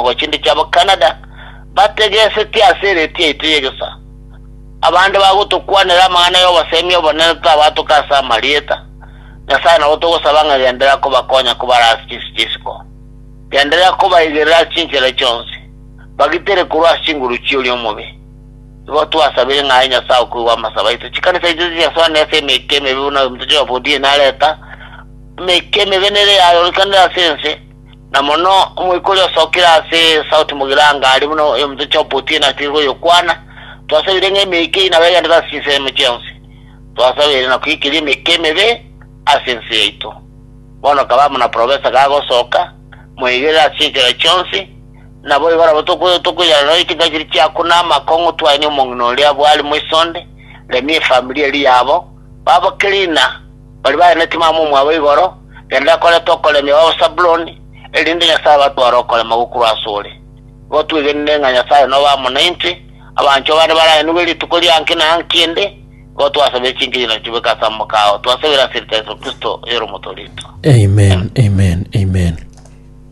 ogochindiki abo Canada bategesetie ase eredio yaito y'egesaa. Abande bagotokwanera amang'ana y'obosemi obonene tabaatoka ase amarieta Nyasae nabo togosaba ng'a genderera kobakonya kobara ase chinse chi'isiko. Genderera kobaigerera ase chinchera chionsi, bagitere korwa ase chinguru chi'oria omobe. Igo twasabire ng'a aye Nyasae okoigwa amasabo aito. Chikanisa chiaito tichiasoanire ase emeika emebe buna oyo ominto Joab o Diane areta, emeika emebe nere yaayorokianire ase ense. Na mono omoika oria osokire ase esauti mogirango aria buna oyominto chi'obotuki enatigerwe oyokwana, Twasabire ng'a emeika eye nabo egenderere ase chinsemo chionsi. Twasabire na koikeria emeika emebe ase ense yaito. Bono kaba amo na profesa gagosoka, moigerere ase chinchera chionsi, naboigo nabo tokoirana nonya chinka chiria chiaku na amakong'u twaenie omong'ina oria bwari moisonde, remia efamiri eria yabo, baba cleaner, Baria bare netimama omwabo igoro, rende akorete okoremia kw'Abasabuloni, erinde Nyasae abatware okorema gokorwa asore. Igo twegenire ng'a Nyasae nobe amo naintwe, abanchwa bane baraenigwe rituko ria inki na inki ende, igo twasabire chinkigina chitubeke ase amaboko ao, twasabire ase riita Yeso Kristo, oyore Omotoorito. Amen, Amen, Amen.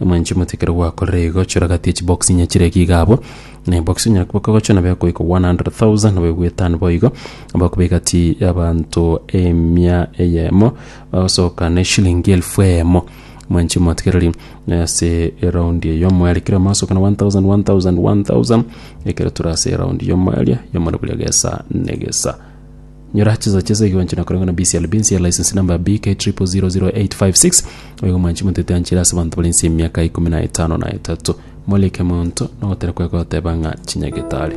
Mwanche mote ekero gwakorire igo, chora gati ye chibox nyachire ki iga abwo, na ebox onyare koba kogochwa nabo ekoika 100,000 nabo egoetano boigo, bakoba egati y'abanto emia eyemo bagosoka ne eshilingi elfu eyemo. Mwanche motigereri eh, ase eraundi eyo omoerio ekero mwasokana 1000 1000 1000 ekero tore ase eraundi y'omoerio y'omorobori egesa negesa. Nyora chinsa chia esegi gwanchire na korengwa na BCLB ense ya license number BK triple zero zero eight five six oyo omwanchi motete anchire ase abanto bari ense y'emiaka ikomi na etano na etato. Molike monto nogotera kwaye kogoteba ng'a chinyagete are.